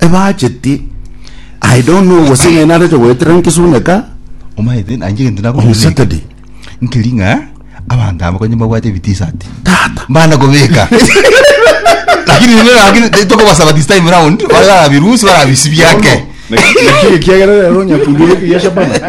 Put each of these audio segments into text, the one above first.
ebacheti i don't know gose ng'ai narete goetera nkisuneka omaete nanje gento on nakomenyeka saturday nkeri ng'a abanto aba konye mbabwate ebitisati tata mbana kobeka lakini nime lakini tokobasaba this time round barabirusi barabisibiake Lakini kiagera rero nyakundi eke ya Shabana.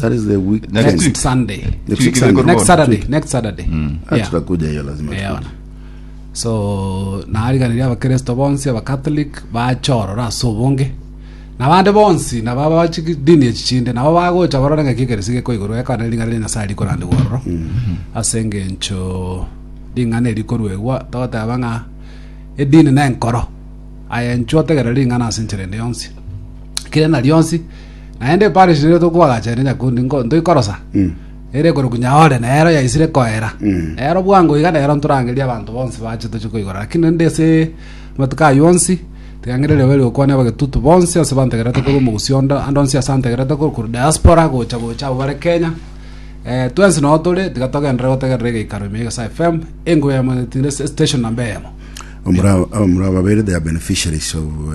That is the week. Next Next week. Sunday. Next week Sunday. Next Next Saturday. week. Next Saturday. Ah, Yeah. tutakuja hiyo lazima Eh, tukuje. ona. so naariganiria abakristo bonsi abakatholik bachorora ase obonge nabande bonsi naba bachi dini echi chinde nabo bagocha barore ng'a kikeresi geko igoro ekana ring'ana ria nyasaye rikorande gwororo ase engencho ring'ana erikoruegwa togoteba ng'a edini nenkoro ayenchwa otegera ring'ana ase enchera ende yonsi kire na rionsi naende eparish nigo tokoagacha ere nyakundi nko- ntoikorosa ere ekorokwa nyaore nero yaisire koera nero bwango iga nero ntorangeria abanto bonsi bache toche koigora lakini rende ase amatuko ayio onsi tiga ngenderere oberio okwane abagetutu bonsi ase bantegerete korwa omogusii onde ande onsi ase antegerete korwa korwa diaspora gocha gocha abwo bare kenya eh, twensi noo tore tiga togenderere gotegerera egeikaro ime ya egesae fm engoya yamo etiire ase station namba eyemo Omura- omura babere they are beneficiaries of uh,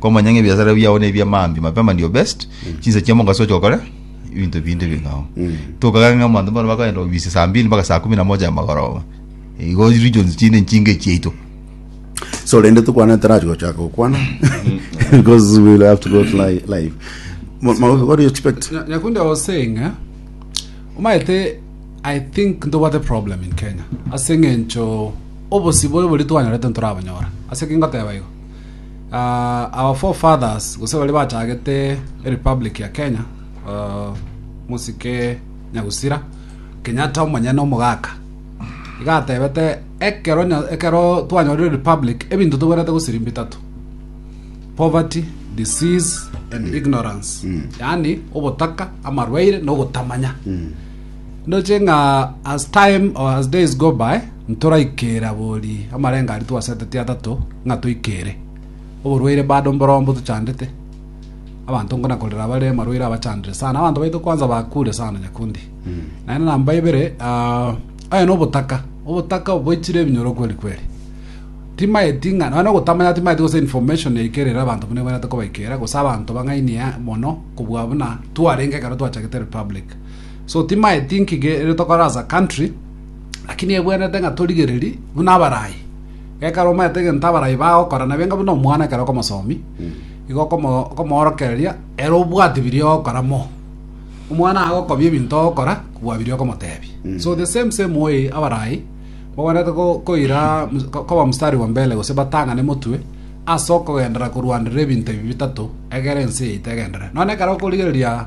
Komanya ng'a ebiasara biao nebia mambia mapema ndio best chinsa chia mogaso oche okore ebinto binde bing'ao tokagaka ng'a abanto mbare bakoenda obisi saa mbili mpaka saa kumi na moja amagoroba igo regions chinde nchinga echiaito so rende tukwana tarachi gochaka gokwana because we will have to go to li- live Ma- ma- what do you expect Na- Nyakundi, I was saying, eh, omaete, I think ntobwate problem in Kenya. Ase eng'encho obosibore bori twanyorete ntorabonyora. Ase ki ngoteba igo? our four fathers gose baria bachagete republic ya Kenya uh, musike Nyagusira Kenyatta omonyene omogaka igatebete ekero nya- ekero twanyorire republic ebinto toberete gosirimba bitatu poverty disease and ignorance yani obotaka amarwaire na ogotamanya Ndoche ng'a as time or as days go by, ntoraikera bori amarengo aria twaseteti atato ng'a toikere. Oborwaire bado mborombo tochandete. Abanto nkona korera bare amarwaire abachandire sana. Abanto baito kwanza bakure sana nyakundi. Naende namba ibere, ah, oye nobotaka. Obotaka oboichire ebinyoro kweri kweri. Timaeti ng'a, nonya ogotamanya timaeti gose information yaikerera abanto buna ebwenerete kobaikera, gose abanto bang'ainia mono kobua buna twarenge ekero twachagete republic. so ti my thinking ere tokore as a country lakini ebwenete ng'a torigereri buna abarai gekero omanyete egento abarai bagokora nabe enga buna omwana ekero okomosomi igo okomo- okomoorokereria ere obwati biria ogokora mo omwana agokobia ebinto ogokora kobua biria okomotebia so the same same way abarai bagwenerete ko- koira mus- ko- koba mstari wa mbele gose batang'ane motwe ase okogenderera korwanderera ebinto ebi bitato egere ense yaito egenderere nonye ekero okorigereria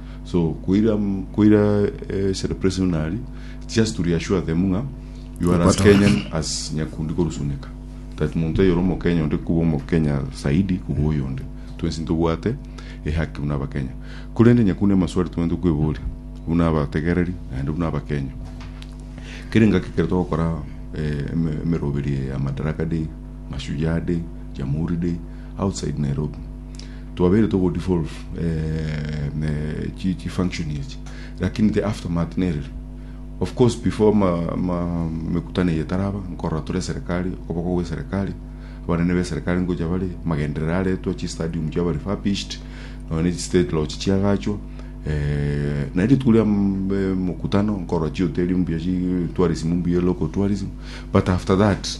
so koira koira eh, celebration buna aria just to reassure them ng'a you are as Okwata. kenyan as nyakundi korusuneka that muntu eyore omokenya onde kuba omokenya saidi kuba oyonde twensi ntobwate ehaki buna abakenya korende nyakundi amaswali twente kweboria buna abategereri naende buna abakenya kere ngaki kere togokora eh, eme- emeroberi ya madaraka day mashujaa day jamhuri day outside nairobi Twabeire togo devolve chi function echi lakini the aftermath nerere of course before emekutano eye etaraba nkorora tore eserekari okoboko gwe eserekari abanene be eserekari ngocha bare magenderero aretwa chi stadium chiaba refurbished nonya ne chi state lodge chiagachwa naende rituko ria emekutano nkorora chihoteri mbuya chi tourism mbuya local tourism but after that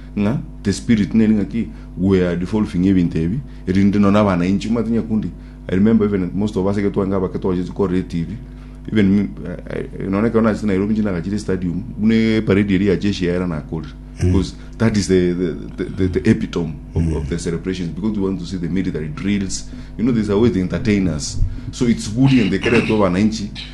ng'a the spirit neri ng'a ki we are devolving ebinto ebi erinde nonye abana inche omanyete nyakundi I remember even most of us ege twange abake twachete korora etv even me, I, I, nonye ekero nachete Nairobi inche nagachire stadium buna eparedi eri ya jeshi yaera nakorire because that is the, the, the, the, the epitome of, of the celebrations because we want to see the military drills you know there's a way they entertain us so it's good and they kere to abana inchi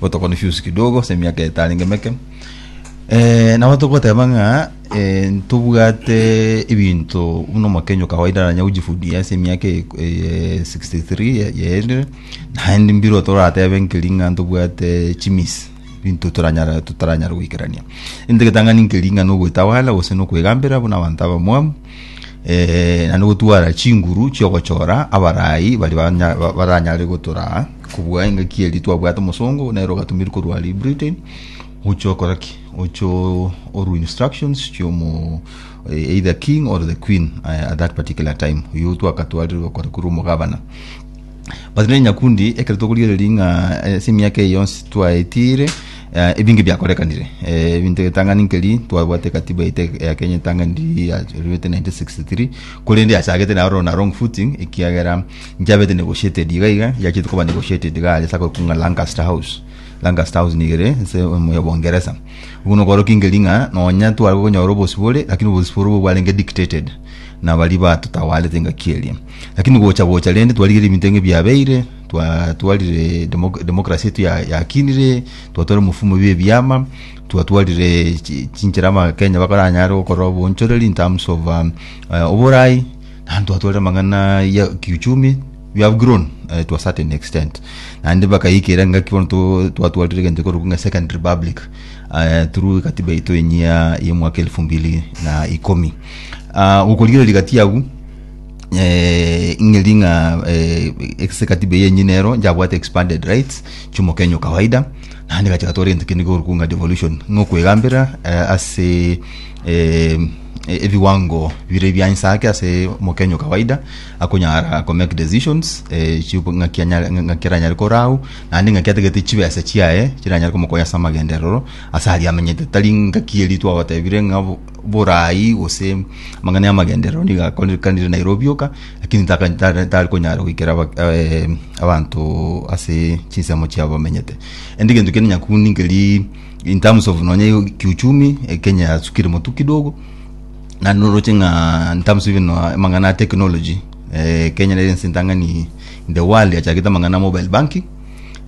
gotokoni fiusi kidogo ase emiaka etarenge meke eh, nabo togoteba ng'a eh, ntobwate ebinto buna omokenyo kawaida nanya gojifudia ase emiaka e- e- 63 ya- yaerire naende mbiro toratebe nkeri ng'a ntobwate chimisi binto toranyara totaranyara goikerania inde getang'ani nkeri ng'a nogoetabala gose nokoegambera buna abanto abamwamu eh, naende gotwara chinguru chiogochora abarai bari banya- ba- baranyare gotoraa kobua engaki eri twabwate omosongo nero ogatumiri korwa ari britain ocho okora ki ocho oru instructions chiomo eh, either king or the queen eh, at that particular time oyo twakatwarirwe okora korwa omogabana but ne nyakundi ekero tokorigereria ng'a eh, ase emiaka eye yonsi twaetire eh, ebinge biakorekanire Eh, ebinto etang'ani nkeri twabwate katiba ete ya kenya etang'ani yaruete 1963 korende yachagete nayo rona wrong footing ekiagera nchabete negotiated iga iga yachete koba negotiated iga are sakokung'a lancaster house lancaster house nigere ase omoyo bongeresa obwo nokorokia nkeri ng'a nonya tware konyora obosibore lakini obosibore obwo bwarenge dictated nabari batutawarete engaki eria Lakini gocha gocha rende twarigereire ebinto ng'a ebiabeire, twatwarire demo- democracy yaito ya- yakinire, twatwarire omofumo bwa ebiama, twatwarire chi- chinchera abakenya bakoranyare gokora obonchoreri in terms of um, eh, oboraai, naende twatwarire amang'ana ya kiuchumi, we have grown eh, to a certain extent. Naende bakaikera engaki bono to- twatwarire egento ekorokwa ng'a second republic eh, through egatiba yaito enyia ya omwaka elfu mbili na ikomi. Ah, gokorigereria gati abwo. eh, ing'eri ng'a eh, ase katiba eye enye nero njabwate expanded rights chiomokenya o kawaida naende gacha gatwara egento kende korokwo ng'a devolution ng'okwegambera eh, ase eh, e- ebiwango bire bia inse ake ase omokenya o kawaida akonyara ko make decisions eh, chibu- ng'aki anyare- ng'aki aranyare korau naende ng'aki atagete chibesa chiaye chiranyare komokonya ase amagenderero ase aria amenyete tari ng'aki eri twagotebire ng'a bo- borai gose amang'ana ya amagenderero nigo akorekanire Nairobi oka lakini taka- tare tari konyara goikera aba- eh, abanto ase chinsemo chiabo bamenyete rende egento kende nyakundi nkeri in terms of nonye yo kiuchumi eh, kenya yasukire motu kidogo na noroche ng'a in terms even of amang'ana ya technology eh, kenya nere ense entang'ani in the world yachakete amang'ana ya mobile banking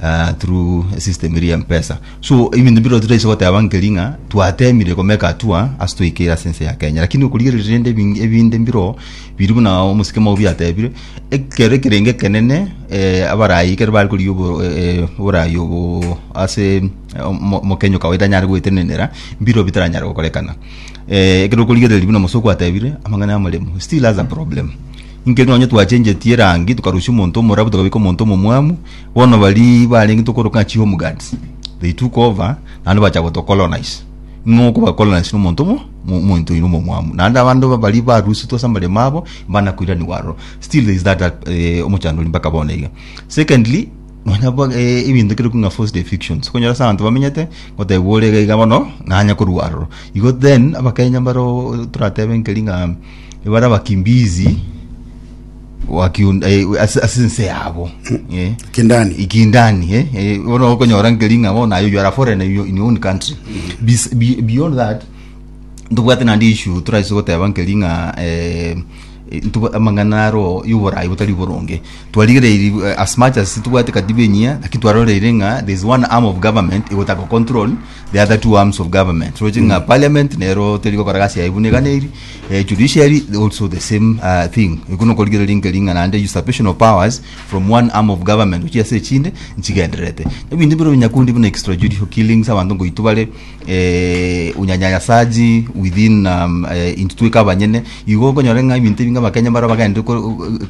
uh, through a system eri ya mpesa so ebinto biro tutaise goteba nkeri ng'a twatemire komeka atua ase toikere ase ense ya kenya lakini okorigereria rende ebing- ebinde mbiro biri buna omosike mao biatebire ekero ekerenge ekenene eh, abarayi ekero bare korigia obo- eh, eh, oborayi obo ase omo- omokenya okawaida anyare goetenenera mbiro bitaranyare gokorekana eh, ekero okorigereria buna omosoko atebire amang'ana ya amaremo still has a problem Inki eri nonye twachengetie erangi tokarusia omonto omorabu tokabeka omonto omomwamu bono baria barenge tokoroka ng'a chihome guards they took over naende bacha gotocolonise ng'o okobacolonise na omonto omo omonto oino omomwamu naende abande baria barusitwe ase amaremo abo mbanakoiranigwa aroro still there is that eh, omochandori mpaka bono iga secondly nonya bo eh, ebinto ekero bikong'a forced evictions okonyora ase abanto bamenyete gotebwa ore iga iga bono nanya korwa aroro igo then abakenya mbaro toratebe nkeri ng'a Ebare abakimbizi wakiun- eh, ase ase ense yabo eh. Kindani. ikindani eh, eh, bono okonyora nkeri ng'a bono naye you are a foreigner in your- in your own country Bes- be- beyond that ntobwate naende issue toraise goteba nkeri ng'a eh, eh, ntobwa- amang'ana aro yoborai botari boronge twarigereiri eh, as much as tobwate katiba enyia naki twaroreire ng'a there is one arm of government egotaka control the other two arms of government roche ng'a parliament nero teri gokora gasi yaye buna eganeiri Eh, judiciary also the same uh, thing iko nokorigereria inke ring'ana ande usurpation of powers from one arm of government gochia ase echinde nchigendererete ebinto bire obinyakundi buna extrajudicial killings abanto ngoitu bare eh, unyanyasaji within um, eh, intu tweka abanyene igo okonyora ng'a ebinto ebinge abakenya bara bagende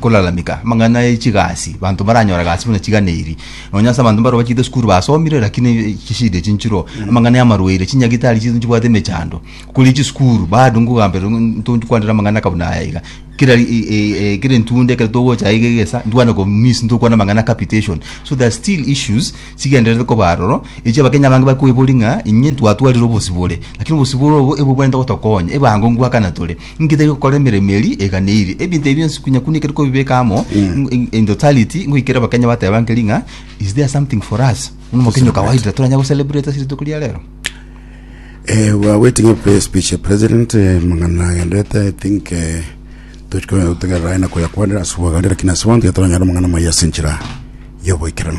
kolalamika amang'ana echigasi banto baranyora gasi buna chigana eri nonya ase abanto baro bachite esukuru basomire lakini chishida chinchiro amang'ana ya amarwaire chinyagitari chitu nchibwate emechando Kore chisukuru bado ngogamberwa ng'a ntonchie kwanera amang'ana akabu naya iga kera ri- e- e- e- kera entunda ekero togocha aiga egesa ntwane komiss ntokwana amang'ana capitation so there are still issues chigendererete koba aroro echio abakenya abange bari koiboria ng'a inye twatwarire obosibore lakini obosibore obo ebwo bwenerete gotokonya ebango ngwakana tore inki tari gokora emeremo eria eganeiri ebinto ebi bionsi konya kune ekero kobibeka amo in- in- in totality ngoikera abakenya bateba nkeri ng'a is there something for us buna omokenya o kawaida toranyare gocelebrate ase rituko ria rero. Eh, we are waiting a prayer speech, eh, President. eh, Mang'ana agenderete, I think eh, tuchikotegerera aina koyakwanera ase obogare, lakini ase bono tiga toranyare omong'ana moyia ase enchera y'oboikeranu.